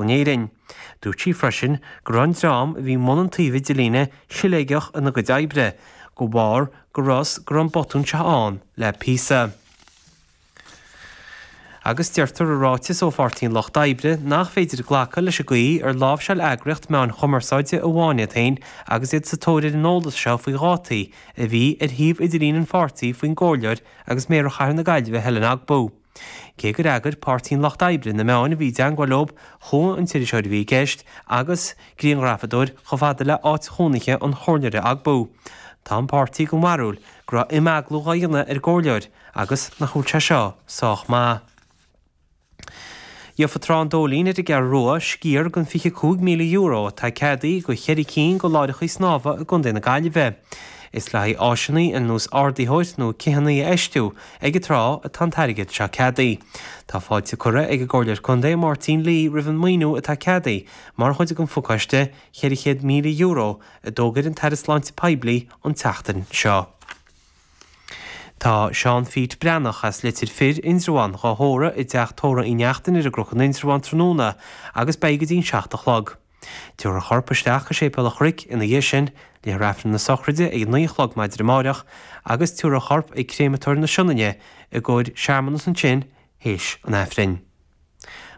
in Éirinn. Dúirt sí freisin go raibh an dream a bhí i mbun an taobh idirlín siléigeach ina gcuid oibre de bharr go raibh go raibh an botún seo ann le píosa. Agus deirtear i ráiteas ó Pháirtí an Lucht Oibre nach féidir glacadh leis an gcaoi ar láimhseáil eagraíocht meáin chumarsáide amháin iad féin agus iad sa tóir ar an eolas seo faoi dhátaí a bhí ar shuíomh idirlín an pháirtí faoin gcomhairleoir agus Méara Chathair na Gaillimhe Helen Ogbu. Cé gur fheagair Páirtí an Lucht Oibre na meáin a bhí i dteangmháil leob, chuaigh an t-iriseoir a bhí i gceist, agus grianghrafadóir, chomh fada le áit chónaithe an Chomhairleora Ogbu. Tá an páirtí den bharúil go raibh imeaglú dhá dhéanamh ar an gComhairleoir, agus nach bhfuil sé seo sách maith. Gheobhaidh Trá an Dóilín ar an gCeathrú Rua, sciar den €25,000 atá ceadaithe do cheithre cinn de láithreachaí snámha i gContae na Gaillimhe. Is le haghaidh áiseannaí ar nós ardaitheoir nó citheannaí a fheistiú ag an trá atá an t-airgead seo ceadaithe. Tá fáilte curtha ag an gComhairleoir Contae, Máirtín Lee, roimh an maoiniú atá ceadaithe mar chuid den fhochiste, €400,000, a d'fhógair an tAire Sláinte Poiblí an tseachtain seo. Tá Seán Pheait Breathnach, as Leitir Fir, Indreabhán, dhá thórramh i dTeach Tórra Uí Neachtain ar an gCnoc in Indreabhán tráthnóna agus beidh go dtí'n seacht a chlog. Tiúrfar a chorp isteach go Séipéal a' Chnoic ina dhiaidh sin, le haghaidh Aifreann na Sochraide ag a naoi a chlog maidin amáireach, agus tiúrfar a chorp ag Créamatóir na Sionainne i gcóir searmanas ansin théis an Aifrinn.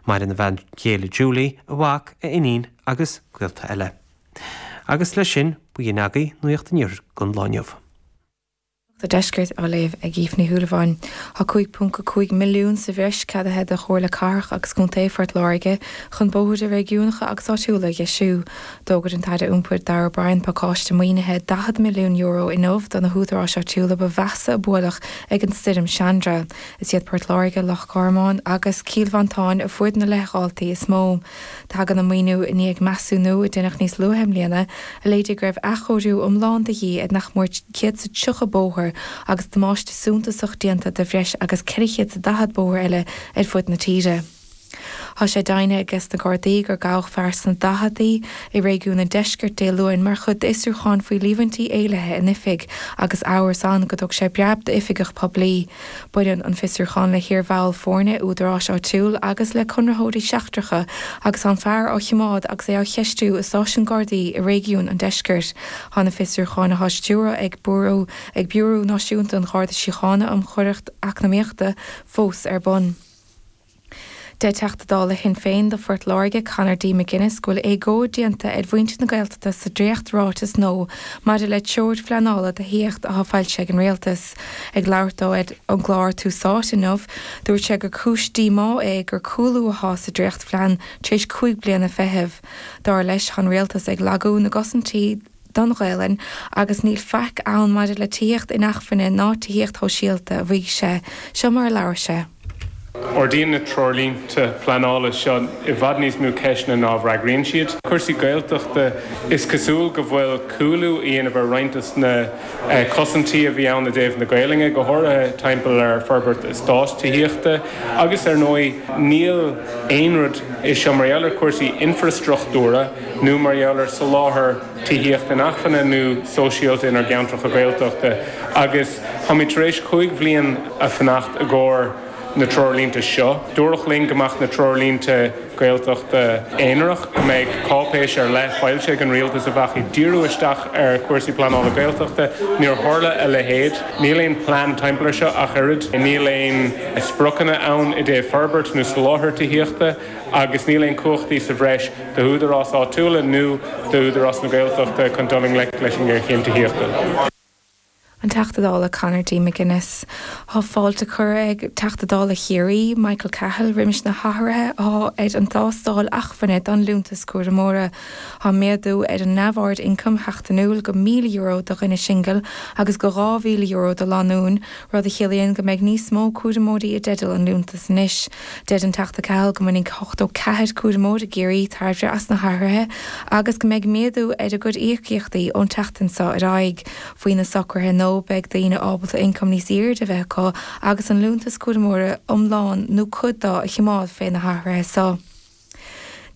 Maireann a bhean chéile Julie, a mhac, a iníon agus gaolta eile. Agus leis sin, b'in é againn nuacht an Iarthair don lá inniu. Nuacht an Deiscirt á léamh ag Aoife Ní Shúilleabháin. Tá 5.5 milliún sa bhreis ceadaithe do Chomhairle Cathrach agus Contae Phort Láirge chun bóithre réigiúnacha agus áitiúla a dheisiú. D'fhógair an tAire Iompair Darragh O'Brien pacáiste maoinithe €40 milliún inniu do na húdaráis áitiúla ba mheasa a buaileadh ag an stoirm Chandra. Is iad Port Láirge, Loch Garman agus Cill Mhantáin a fuair na leithdháiltí is mó. Tagann an maoiniú i ndiaidh measúnú a deineadh níos luaithe i mbliana a léirigh go raibh athchóiriú iomlán de dhíth ar nach mór céad sa tríocha bóthar agus damáiste suntasach déanta do bhreis agus ceithre chéad sa daichead bóthar eile ar fud na tíre. Tá sé deimhnithe ag na Gardaí gur gabhadh fear sna daicheadaí i réigiún an Deiscirt Dé Luain mar chuid d'fhiosrúchán faoi líomhaintí éillithe in oifig agus amhras ann go dtug sé breab d'oifigeach poiblí. Baineann an fiosrúchán le hiar-bhall foirne údaráis áitiúil agus le conraitheoirí seachtracha agus tá an fear á chimeád agus é á cheistiú i Stáisiún Gardaí i réigiún an Deiscirt. Tá na fiosrúcháin atá á stiúradh ag Biúró ag Biúrú Náisiúnta an Gharda Síochána um Choireacht Eacnamaíochta fós ar bun. Deir Teachta Dála Shinn Féin do Phort Láirge Conor D McGuinness go bhfuil éagóir déanta ar mhuintir na Gaeltachta sa dréacht ráiteas nua maidir le treoir phleanála do thithíocht atá foilsithe ag an Rialtas. Ag labhairt dó ar an gclár Tús Áite inniu dúirt sé gur cúis díomá é gur cúlú athá sa dréachtphlean tar éis cúig bliana feithimh. Dar leis tá an Rialtas ag lagú na gcosaintí do don Ghaelainn agus níl faic ann maidir le tithíocht inacmhainne ná tithíocht shóisialta, a mhaígh sé. Seo mar a labhair sé. Ardaíonn na treoirlínte pleanála seo i bhfad níos mó ceisteanna ná a bhfreagraíonn siad. Cúrsaí Gaeltachta, Is cosúil go bhfuil cúlú á dhéanamh ar roinnt de na cosaintí a bhí ann i dtaobh na Gaelainne, go háirithe timpeall ar forbairt eastáit tithíochta agus ar ndóigh níl aon rud anseo mar gheall ar chúrsaí infreastruchtúra. nó mar gheall ar soláthar tithíocht inacmhainne nó sóisialta inár gceantracha Gaeltachta agus táimid tar éis cúig bliana ag fanacht i gcomhair na treoirlínte seo. Dúradh linn go mbeadh na treoirlínte Gaeltachta aonarach, go mbeidh cáipéis ar leith foilsithe ag an Rialtas a bheadh ag díriú isteach ar chúrsaí pleanála Gaeltachta. Níor tharla a leithéid. Níl aon plean timpeall ar seo ach oiread. Níl aon spriocanna ann i dtaobh forbairt nó soláthar tithíochta. agus níl aon cumhachtaí sa bhreis d'údaráis áitiúla nó d'Údarás na Gaeltachta chun dul i ngleic leis an ngéarchéim tithíochta. An Teachta Dála Conor D. McGuinness, Tá fáilte curtha ag Teachta Dála Chiarraí, Michael Cahill, roimis na hathruithe athá ar an dtástáil achmhainne don Liúntas Cúramóra. Tá méadú ar an neamhaird ioncaim sheachtainiúil go €1,000 do dhuine singil agus go €2,000 do lánúin, rud a chiallaíonn go mbeidh níos mó cúramóirí i dteideal an liúntas anois. Deir an Teachta Cahill go mbainfidh ochtó ceathair cúramóir i gCiarraí tairbhe as na hathruithe agus go mbeidh méadú ar a gcuid íocaíochtaí ón tseachtain seo ar aghaidh. Faoi na socruithe nua, beidh daoine ábalta ioncam níos airde a bheith acu agus an liúntas cúramóra iomlán nó cuid de a chimeád fé na hathruithe so.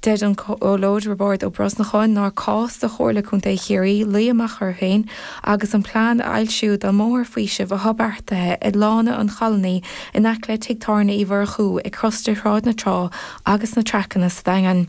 Deir an Comhairleoir Roibeárd Ó Brosnacháin nár cás do Chomhairle Contae Chiarraí luí amach orthu féin agus an plean a fhoilsiú don mbóthar faoisimh atá beartaithe ag Lána an Cholony in aice le Tigh Tábhairne Uí Mhurchú ag crosta Shráid na Trá agus na Traiceanna sa Daingean.